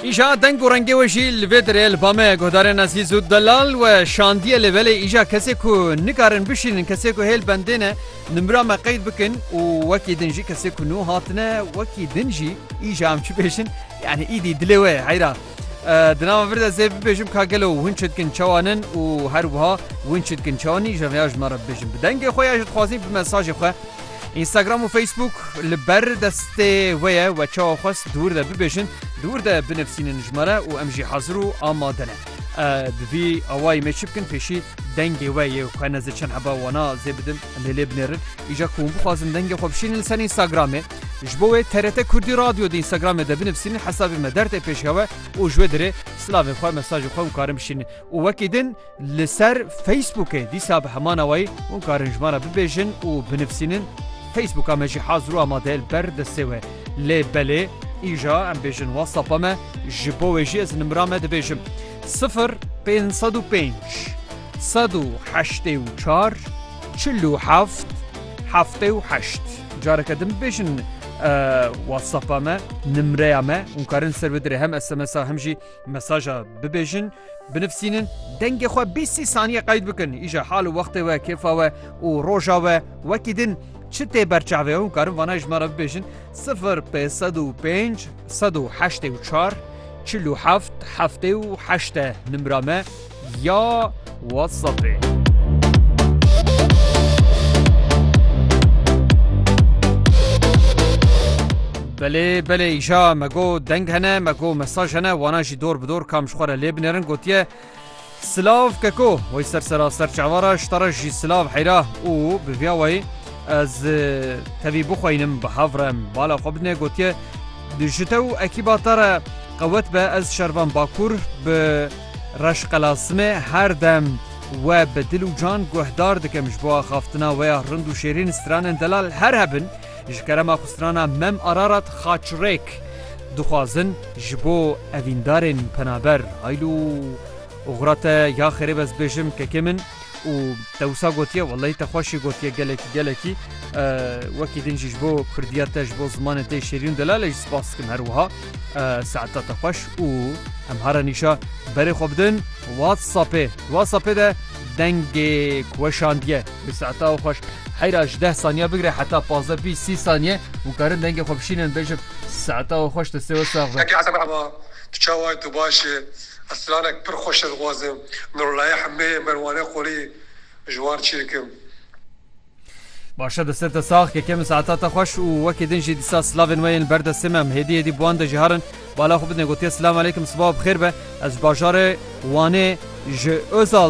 Îja deng û rengê wê jî li vê derê li ba me guhdarên ezîz û delal we şandiye lê belê îja kesê ku nikarin bişînin kesê ku hêl bendê ne nimra me qeyd bikin û wekî din jî kesê ku nû hatine wekî din jî îja em çi bêjin yanî îdî dilê wê ye heyra Di nava vir de zê bibêjim ka gelo hûn çi dikin çawan in û her wiha hûn çi dikin çawan nîn ji rêya ji me re bibêjin. Bi dengê xwe ya ji dixwazîn bi mesajê xwe Instagram û Facebook li ber destê we ye we çawa xwest dûr de bibêjin dûr de binivîsînin ji me re û em jî hezir û amade ne. Bi vî awayî me çi bikin pêşî dengê we yê xwe nezê çend heba wana zê bidim em lê lê binêrin îja ku hûn bixwazin dengê xwe bişînin li ser Instagramê. Ji bo wê TRT Kurdî Radyo di Instagramê de binivîsînin hesabê me der tê pêşiya we û ji wê dirê silavên xwe, mesajên xwe hûn karin bişînin. Û wekî din li ser Facebookê dîsa bi heman awayî hûn karin ji me re bibêjin û binivîsînin. Facebooka me jî hazir û amade ye li ber destê we. Lê belê îja em bêjin WhatsAppa me ji bo wê jî ez nimira me dibêjim sifir pênc sed û pênc sed û heştê û çar çil û heft heftê û heşt. Careke din bêjin WhatsAppa me, nimreya me hûn karin ser bidirê hem SMSa hem jî mesaja bibêjin, binivîsînin, dengê xwe bîst sî saniye qeyd bikin, îja hal û wextê we, kêfa we û roja we wekî din çi tê berçavê hûn karin vana ji me re bibêjin sifir pê sed û pênc sed û heştê û çar çil û heft heftê û heşt e nimra me. ya WhatsAppê. Belê belê îşa me go deng hene me go mesaj hene wana jî dor bi dor kam ji xwe re lê binêrin gotiye Silav keko wey ser sera ser çavara ji te re jî silav heyra û bi viya wey ez e, tevî bixweynim bi hev re bala xwe bidinê gotiye ji te û ekîba te re qewet be ez şervan bakur bi Reş Qelasimê her dem we bi dil û can guhdar dikim ji bo axaftina we ya rind û şêrîn stranên delal her hebin ji kerema xwe strana Mem Ararat Xaçrêk dixwazin ji bo evîndarên penaber haylo oxira te ya xêrê be ez dibêjim kekê min û te wisa gotiye welay te xweşî gotiye gelekî gelekî wekî din jî ji bo kurdiya te ji bo zimanê tê şêrîn delale jî spas dikim her wiha saeta te xweş û em hara nîşa berê xwe bidin whatsappê whatsappê de dengê kuweşandiye bi saeta û xweş heyra ji deh saniye bigire heta pazdeh bîst sî saniye û karin dengê xwe bişînin bêjin saeta û xweş te sê we sax be. Heke Esed merhaba tu çawa tu baş î. Ez planek pir xweş e dixwazim Nurullayê Hemeyê, Merwanê Qolî ji wan çêkim. Başe destên te sax keke min saeta te xweş û wekî din jî dîsa silavên we yên li ber destê me em hêdî hêdî bi wan de jî herin bala xwe bidin gotiye silamaleykim sibawa bi xêr be ez ji bajarê wanê ji ozal